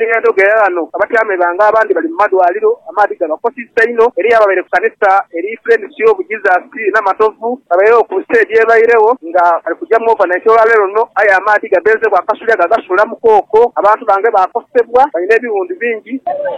Eng'endo ghe ghano abatyaime ba nga abandi bali mu madwaliro, amaadhi gabakosizza inho. Eriyo ababaire ku kanisa eri Friends of Jesus e Namatovu babairagho ku nsi edho ebairegho nga bali kuja mu overnight olwa leero luno aye amaadhi gabeezeegho akasulya gagasuula mu kooko. Abantu bange baakosebwa, balina ebiwundu bingi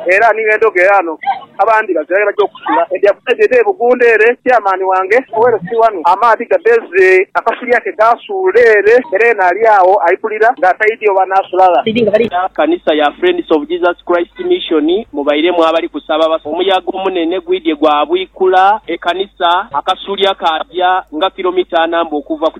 era ni ng'endo ghe ghano. Abandi bazira ghe baja okusula. Endi akuside dhe Bugunda ere, Chairman wange Owere si wano. Amaadhi gadheze, akasulya ke kaasuula ere, era yena ali agho aipulira nga ataidhi oba anaasula gha. Kanisa ya Friends of Jesus Christ Mission mubairemu abali kusaba abasatu. Omuyaga omunene gwidhye gwaabwikula ekanisa, akasulya kaaja nga kilomita ana mbu okuva ku.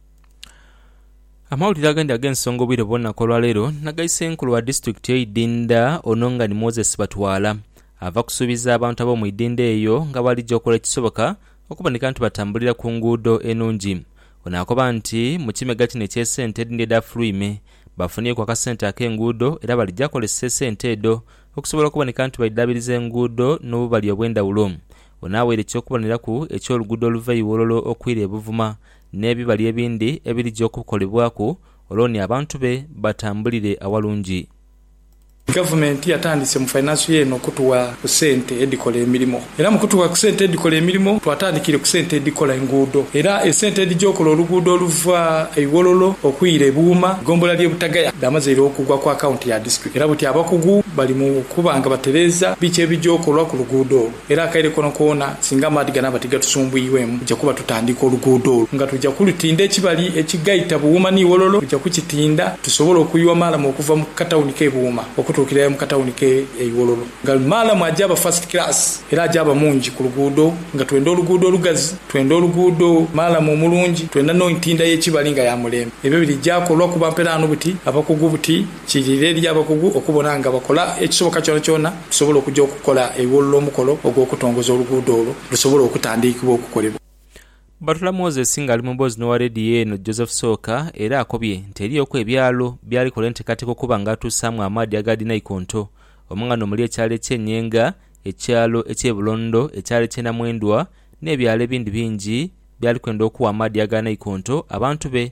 Amawulire agandi ag'ensonga obwire bwona ku olwaleero nag'ai Senkulu wa disitulikiti y'eidinda ono nga ni Moses Batwala ava kusuubiza abantu ab'omu idinda eyo nga bwalija okola ekisoboka okuboneka nti batambulira ku nguudo enungi. Ono akoba nti mu kimegga kino eky'esente edindi edha Fluime bafunyeku akasente ak'enguudo era balija kozesa esente edho okusobola okuboneka nti baidhaabiriza enguudo n'obubali obw'endhawulo. Ono aweire eky'okuboneraku eky'oluguudo oluva e Iwololo okwira e Buvuma n'ebibali ebindi ebirija okukolebwaku olwo ni abantu be batambulire awalungi. Gavumenti yatandise mu fainansi ye eno okutugha ku sente edhikola emirimo era mu kutugha ku sente edhikola emirimo twatandikire ku sente edhikola enguudo era esente edhija okola oluguudo oluva e Iwololo okwira e Buuma mu gombola ly'e Butagaya dhamazeire okugwa ku akaunti ya disitulikiti era buti abakugu bali mu kuba nga batereeza biki ebija okolwa ku luguudo olwo. Era akaire koonakoona singa amaadhi ganaaba tigatusumbwirwemu, tuja kuba tutandiika oluguudo olwo nga tuja kulutinda ekibali ekigaita Buwuma ni Wololo, tuja kukitinda tusobole okuyiwa maalamu okuva mu katawuni k'e Buwuma okutuukira ira mu katawuni k'e Iwololo nga maalamu ajaaba first class era ajaaba mungi ku luguudo nga twenda oluguudo olugazi, twenda oluguudo maalamu omulungi, twenda n'entinda y'ekibali nga ya mulembe. Ebyo biri gyakolwa kuba mperaano buti abakugu buti Kiidhirira eri abakugu okubona nga bakola ekisoboka kyonakyona tusobole okuja okukola eghulula omukolo ogw'okutongoza oluguudo olwo lusobole okutandiikibwa okukolebwa. Batula Moses ng'ali mu mboozi n'owa leediyo eno Joseph Sooka era akobye nti eriyoku ebyalo by'alikola enteekateeka okuba nga atuusaamu amaadhi aga dhinaikonto omwo nga n'omuli ekyalo eky'e Nyenga, ekyalo eky'e Bulondo, ekyalo eky'e Namwendwa n'ebyalo ebindi bingi by'ali kwenda okuwa amaadhi aga naikonto abantu be.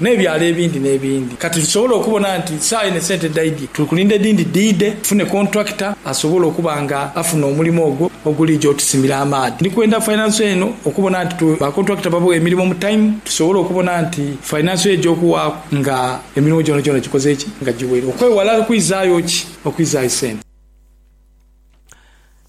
n'ebyalo ebindi n'ebindi. Kati tusobola okubona nti saagha eno esente dhaidhye, tuli kulinda edhindi dhiidhe tufune kontulakita asobola okuba nga afuna omulimo ogwo oguliija otusimira amaadhi. Ndi kwenda fainanso eno okubona nti bakontulakita babugha emirimo mu taimu tusobole okubona nti fainanso eyo egy'okuwaaku nga emirimo gyonagyona gikoze ki? Nga giwere, okwewala okwizaayo ki? Okwizaayo sente.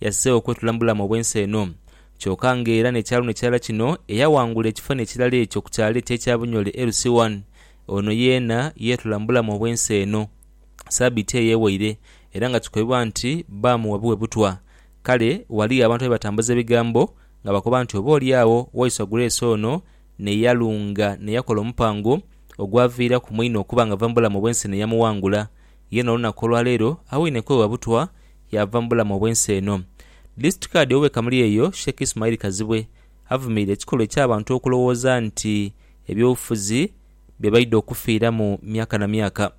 Yazze okwetula mu bulamu obw'ensi eno. Kyoka nga era n'ekyalo ni kirala kino, eyaghangula ekifanhi ekirala ekyo ku kyalo eky'ekya Bunyole Ersiwan, ono yeena yeetula mu bulamu obw'ensi eno sabiiti eyo ewaire era nga kikobibwa nti baamuwa bighe butwa. Kale ghaliyo abantu abebatambuza ebigambo nga bakoba nti oba oli agho Waiswa Grace ono ne yalunga ne yakola omupango ogwaviiraku mwine okuba nga ava mu bulamu obw'ensi ne yamughangula Yena olunaku olwaleero awoine kwewa butwa yaava mu bulamu obw'ensi eno. Disitulikiti Kaadi owe Kamuli eyo Sheik Ismail Kazibwe avumiire ekikolwa eky'abantu okulowooza nti eby'obufuzi bye baidha okufiiramu myaka na myaka.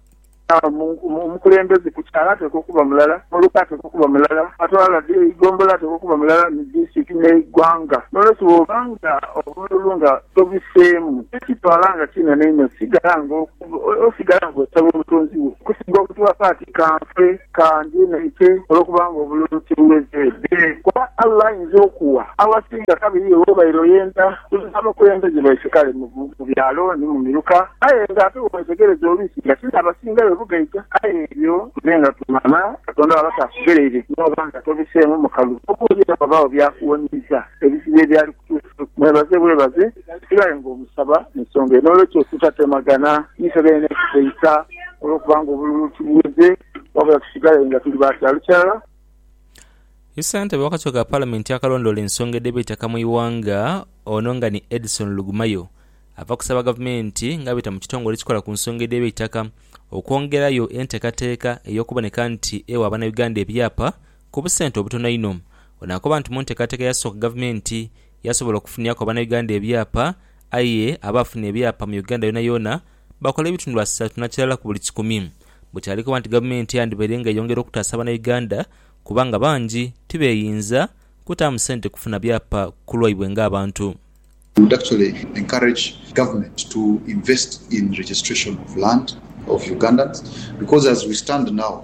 Omukulembeze ku kyalo atekwa okuba mulala, muluka atekwa okuba mulala, atwala eigombolola atekwa okuba mulala ni disitulikiti n'eighwanga. N'olwekyo bwoba nga obululu nga tobiseemu, tokitwala nga kinene inho, sigala nga. Osigala nga osaba Omutonzi wo okusinga obutuwapa ati ka nfe, ka ndye n'eite, olw'okuba nga obululu tibuweze. Ee, kuba Allah ayinza okuwa awasinga kabiri iwe w'obaire oyenda. Tuli abakulembeze baife kale mu byalo ni mu miruka, aye nga ate bw'owetegereza oluusi nga ti n'abasingayo bugaita. Aye ebyo nze nga tumala Katonda bw'aba taakughereire n'oba nga tobiseemu mukalu, oboolyawo ghabagho by'akuwonyiiza ebizibu ebyali kutuuse. Mwebaze bwebaze. Sigala nga omusaba mu nsonga eyo. N'olwekyo tutatemagana ife beene kufeisa olw'okuba nga obululu tubuweze, wabula tusigale nga tuli ba kyaalo kirala. Ye Ssentebe w'akakiiko ka Palamenti akalondoola ensonga edh'eby'eitaka mu ighanga, ono nga ni Edson Lugumayo, ava kusaba Gavumenti nga abita mu kitongole ekikola ku nsonga edh'eby'eitaka okwongerayo enteekateeka ey'okuboneka nti ewa Abanayuganda ebyapa ku busente obutono einho. Ono akoba nti mu nteekateeka eyasooka Gavumenti Yasobola okufuniaku abanauganda ebyapa aye abaafuna ebyapa mu Uganda yoonayoona bakola ebitundu asatu na kirala ku buli kikumi. Bukyali koba nti gavumenti yandibaire nga eyongera okutaasa banauganda kubanga bangi tibeeyinza kutaamu sente kufuna byapa ku lwaibwe nga abantu. We would actually encourage government to invest in registration of land of Ugandans because as we stand now